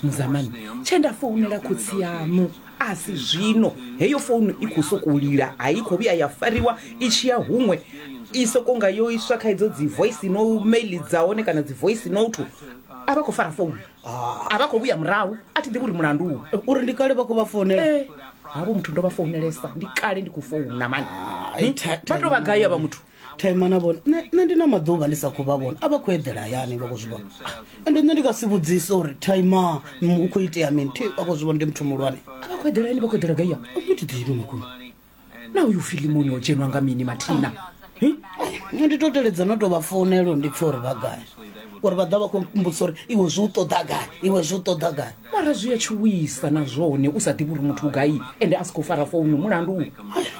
muzamani tshe nda founela khotsi yaṋu a si zwino heyo founu i khou sokou lila a i khou vhuya ya fariwa i tshi ya huṅwe i sokou nga yo iswa kha idzo dzi voice no mail dza hone kana dzi voice note a vha khou fara founu a vha khou vhuya murahu a thi ḓivhi uri mulandu uri ndi kale vha khou vha founela havho muthu ndo vha founelesa ndi kale ndi khou founa mani vha tou vha gai avha muthu thaimana vhone nṋe ndi na maḓuvha ndi sa khou vha vhona a vha khou eḓela hayani vha khou zwi vhona ende nṋe ndi nga si vhudzise uri thaima u khou itea mini thi vha khou zwi vhona ndi muthu muhulwane a vha khou eḓela yani vha khou eḓela gaiya ndi thi ḓivhi makhulu na uyu filimoni o dzhenwa nga mini mathina nṋe ndi to teledza no tou vha founelo ndi pfha uri vha gai uri vha ḓa vha khou mmbudza uri iwe zwi u ṱoḓa gai iwe zwi u ṱoḓa gai Mara zwi a tshuwisa na zwone u sa ḓivhi uri muthu u gai ende a si khou fara founu mulandu u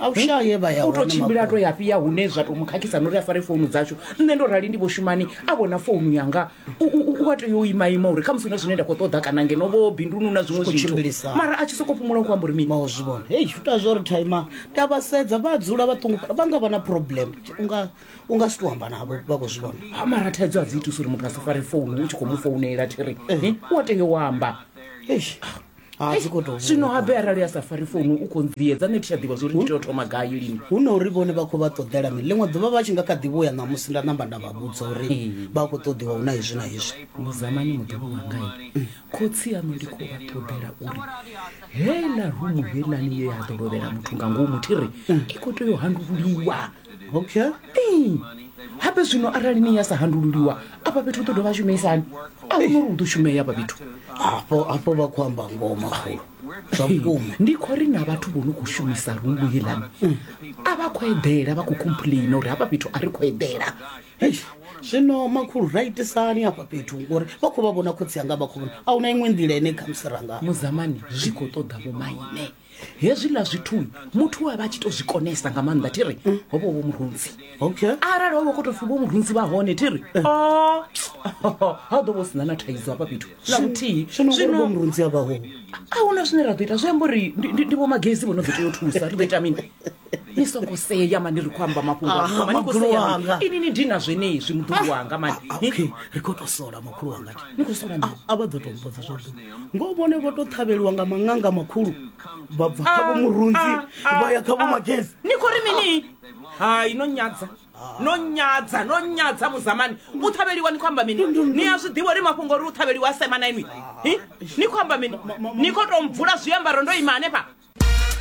A u shayi he vha ya u tou hone tshimbila a makhulu. to ya fhi ya hune zwa tou mu khakhisa na uri a fare founu dzashu nṋe ndo rali ndi vho shumani a vhona founu yanga u- u u- u a tea u imaima uri khamusi hu na zwine nda khou ṱoḓa kana ngeno vho binduni hu na zwiṅwe Zwi khou zwithu tshimbilisa. mara a tshi sokou fhumula u khou amba uri mini vha u zwi vhona hei zwi ita zwo ri thaima nda vha sedza vha dzula vha ṱungufhala vha nga vha na problem unga u nga si to amba navho vha khou zwi vhona ha mara thaidzo a dzi itusa uri muthu a si fare founu u tshi khou mu founela thiri Eh, u a tea u amba Eish, ha dzi khou tou zwino habe arali a sa fari founu u khou nviedza nṋe thi tsha ḓivha zwori ndi tea u thoma gai lini hu na uri vhone vha khou vha ṱoḓela mini ḽiṅwe ḓuvha vha tshi nga kha ḓi vhuya ṋamusi nda namba nda vha vhudza uri vha khou ṱoḓiwa hu na hezwi na hezwi muzamani muḓivhi wangai khotsi aṋu ndi khou vha ṱoḓela uri heiḽa rumu heiḽani ye ya ḓo lovhela muthu nga ngomu thi ri i khou tea u handululiwa okay ee hape zwino arali ni ya sa handululiwa afha fhethu u ḓo dovha shumisani a hu nori u ḓo shumea afha fhethu hafho hafho vha khou amba ngoho makhulu zwa vhukuma ndi khou ri na vhathu vho no khou shumisa rungu heḽani a vha khou eḓela vha khou complaina uri hafha fhethu a ri khou eḓela Eish, zwino makhulu ra itisani hafha fhethu ngori vha khou vha vhona khotsi anga vha khou vhona a huna iṅwe nḓila ine khamusi ranga muzamani zwi khou ṱoḓa vhomaine hezwiḽa zwithu muthu a vha a tshi to zwi konesa nga maanḓa thi ri ho vha vho murunzi okay arali ho vha kho to pfi vho murunzi vha hone thi ri o ha ḓo vho sina na thaidzo hafha fhethu na muthihi zwino ngori vho murunzi a vhaho a huna zwine ra ḓo ita zwi amba uri ndi- ndi ndi vho magezi vho no ḓo tea u thusa ri ḓo ita mini ni songo sea mani ri khou amba mafhungo Ah, a- mani khou makhulu sea mani. wanga. ini ni dina zwenezwi muḓulu wanga mani Ah, Ni- okay ri khou tou sola makhulu wanga thi. ni khou sola mini? a vha ḓo tou mbodza zwa vhuḓi ngo vhone vho tou ṱhavheliwa nga maṅanga makhulu vha bva kha vho murunzi vha ya kha vho magezi ni khou ri mini hai no nyadza no nyadza no nyadza muzamani u ṱhavheliwa ni khou amba mini ni a zwi ḓivha uri mafhungo uri u ṱhavheliwa a sema na inwi Hi? ni khou amba mini ni khou tou mvula zwiambaro ndo ima hanefha